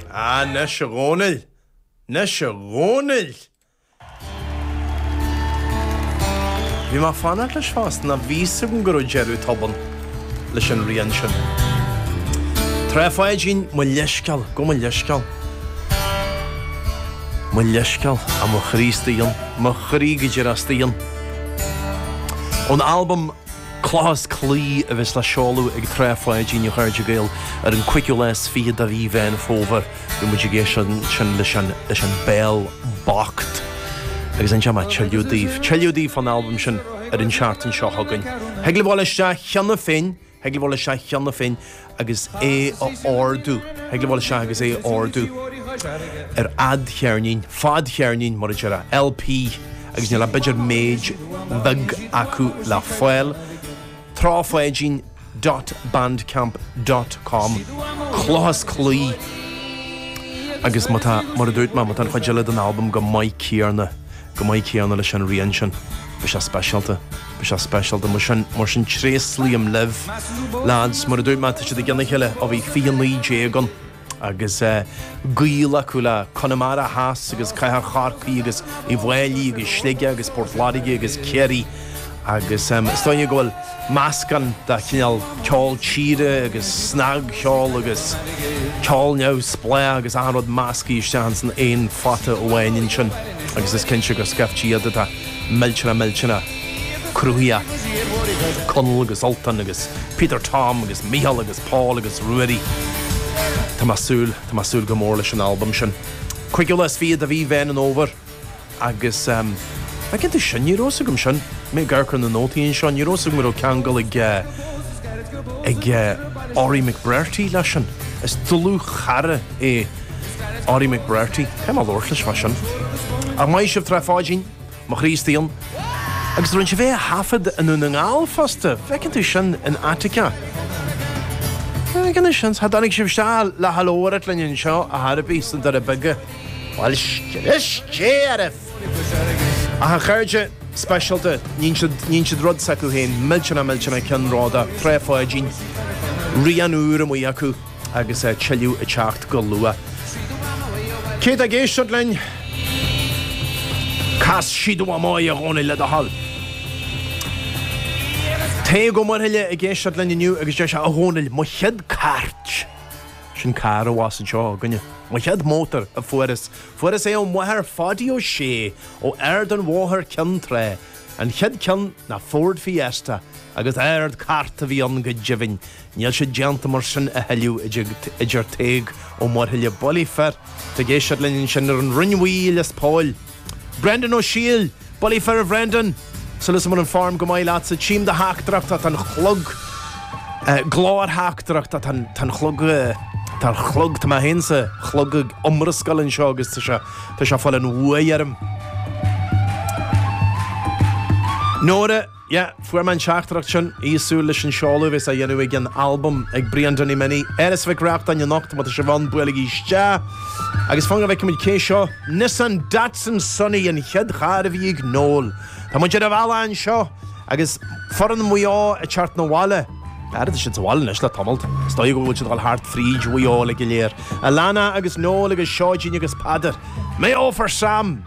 Anois a Dhónaill! Anois a Dhónaill! Bhí mé fanacht leis fosta nó bhí fhios agam go raibh deireadh tobann leis an rian sin. Trá Pháidín, mo leithscéal, gabh mo leithscéal. Mo leithscéal, a mo chroí staon, mo chroí go díreach staon. Ón albam. Cloch is Claí a bheas le seoladh ag Trá Pháidín a chairde Gael ar an 5ú lá is fiche de mhí Mheán Fómhair. Beidh muid ag éisteacht ansin leis an leis an Béal Bocht agus ansin beidh tuilleadh daoibh tuilleadh daoibh fán albam sin ar an seachtain seo chugainn. Thig libh dul isteach cheana féin thig libh dul isteach cheana féin agus é a ordú, thig libh a ghabháil isteach agus é a ordú ar fhadcheirnín, fadcheirnín mar a deir a LP agus níl ach b'fhéidir méid bheag acu le fáil. Trá Pháidín dot bandcamp dot com Cloch is Claí agus má tá, mar a dúirt mé, má tá an chuid eile den albam chomh maith céanna. chomh maith céanna leis an rian sin. Beidh sé speisialta. Beidh sé speisialta. Mar sin, mar sin, tréaslaím libh, leaids. Mar a dúirt mé, tá siad i gcionn a chéile ó bhí 'Fiche Naoi Déag' ann. Agus gaol acu le Conamara Theas agus cathair Chorcaí agus Uíbh Fháilí agus Sligeach agus Port Láirge agus Ciarraí. Agus is dóigh liom go bhfuil meascán de chineál ceol tíre agus snagcheol agus ceol neamhspleách agus achan rud meascaithe isteach ins an aon phota amháin ansin. Agus is cinnte gur scaifte iad atá millteanach millteanach cruthaitheach, Conall agus Ultan agus Peter Tom agus Micheál agus Paul agus Ruairí. Tá mé ag súil, tá mé ag súil go mór leis an albam sin. Cúigiú lá is fiche de mhí Mheán an Fhómhair agus ehm, bhfeiceann tú sin, ní raibh fhios agam sin, mé ag amharc ar na nótaí anseo, ní raibh fhios agam go raibh ceangal ag eh, ag eh, Orri McBrearty leis sin. Is dlúthchara é. Orri McBrearty, caithfidh mé labhairt leis mar sin, á maith sibh Trá Pháidín, Mo Chroí Staon. Agus rinne sibh é a thaifead i nDún na nGall fosta, bhfeiceann tú sin in Attica. Agus ansin cha dtáinig sibh isteach le ha labhairt linn anseo ar chor ar bith sna Doirí Beaga. Bhuel scrios Dé oraibh! Ach a chairde speisialta, níonn siad, níonn siad rud s'acu féin, millteanach, millteanach ceannródaíoch, Trá Pháidín, rian úr amuigh acu. agus a tuilleadh ag teacht go luath. Cé atá ag éisteacht linn? Cas iad do Mhamaí a Dhónaill le do thoil. Tadhg Ó Muirthile ag éisteacht linn inniu agus deir sé, A Dhónaill, mo chéad cairt, sin carr abhus anseo againne, mo chéad mótar a fuaireas, fuaireas é ó mháthair Pháidí Ó Sé ó Ard an Bhóthair Ceann Trá, an chéad ceann ná Ford Fiesta agus ardchairt a bhí ann go deimhin. Níl sé déanta mar sin a thuilleadh a deir Tadhg Ó Muirthile, bulaí fir, atá ag éisteacht linn ansin ar an Rinn Bhuí i Lios Póil. Brendan Ó Siadhail, bulaí fir a Bhrendan, súil agam go bhfuil an form go maith leatsa, tchím do theachtaireacht, tá an chlog, go leor teachtaireachtaí, tá an chlog, tá an chlog, tá mé féin is an chlog ag iomrascáil anseo agus tá sé, tá sé ag fáil an bhuaidh orm. Nóra. Yeah, fuair mé an teachtaireacht sin. Í ag súil leis an seoladh a bheas á dhéanamh ag an albam ag Brian Danny Minnie, in Áras Mhic Reachtain anocht, má tá sibh ann, buailigí isteach! Agus fan go bhfeicimid cé seo, Nissan Datsun Sunny an chéad charr a bhí ag Noel. Tá muid ar an bhealach anseo! Agus foireann Mhaigh Eo ag teacht 'na bhaile. Ara tá siad sa bhaile anois le tamalt. Is dóigh go bhfuil siad ag dul thart fríd Mhaigh Eo uilig go léir. Alana agus Noel agus Seoidín agus Peadar. Mayo for Sam!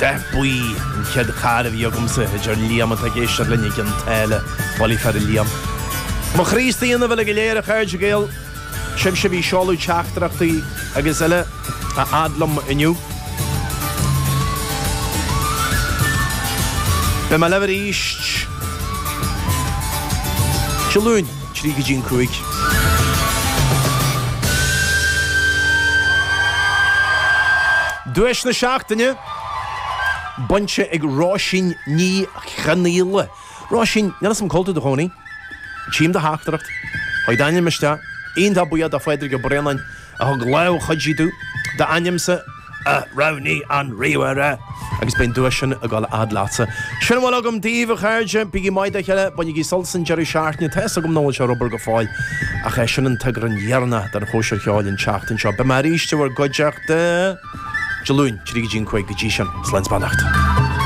Dath buí an chéad charr a bhí agamsa, a deir Liam, atá ag éisteacht linn i gCionn tSáile. Bulaí fir, a Liam. Mo chroí istigh ionaibh uilig go léir, a chairde Gael. Sibhse a bhí ag seoladh teachtaireachtaí agus eile a fhad liom inniu. Beidh mé libh arís Dé Luain. trí go dtí an cúig. Duais na Seachtaine, bainte ag Róisín Ní Chonaola. Róisín, níl 'fhios a'm cá bhfuil tú i do chónaí. Tchím do theachtaireacht. Chuaigh d'ainm isteach. Iontach buíoch do Phádraig Ó Braonáin a thug lámh chuidí dúinn d'ainmse a roghnaigh an ríomhaire. Agus beidh an duais sin ag dul a fhad leatsa. Sin a bhfuil agam daoibh, a chairde. Bígí maith dá chéile, bainigí sult as an deireadh seachtaine. Tá fhios agam nach bhfuil sé ar obair go fóill, ach sé sin an t-eagrán deireanach den Chóisir Cheoil an tseachtain seo. Beidh mé arís i bhur gcuideachta Dé Luain, trí go dtí an cúig. Go dtí sin, slán is beannacht.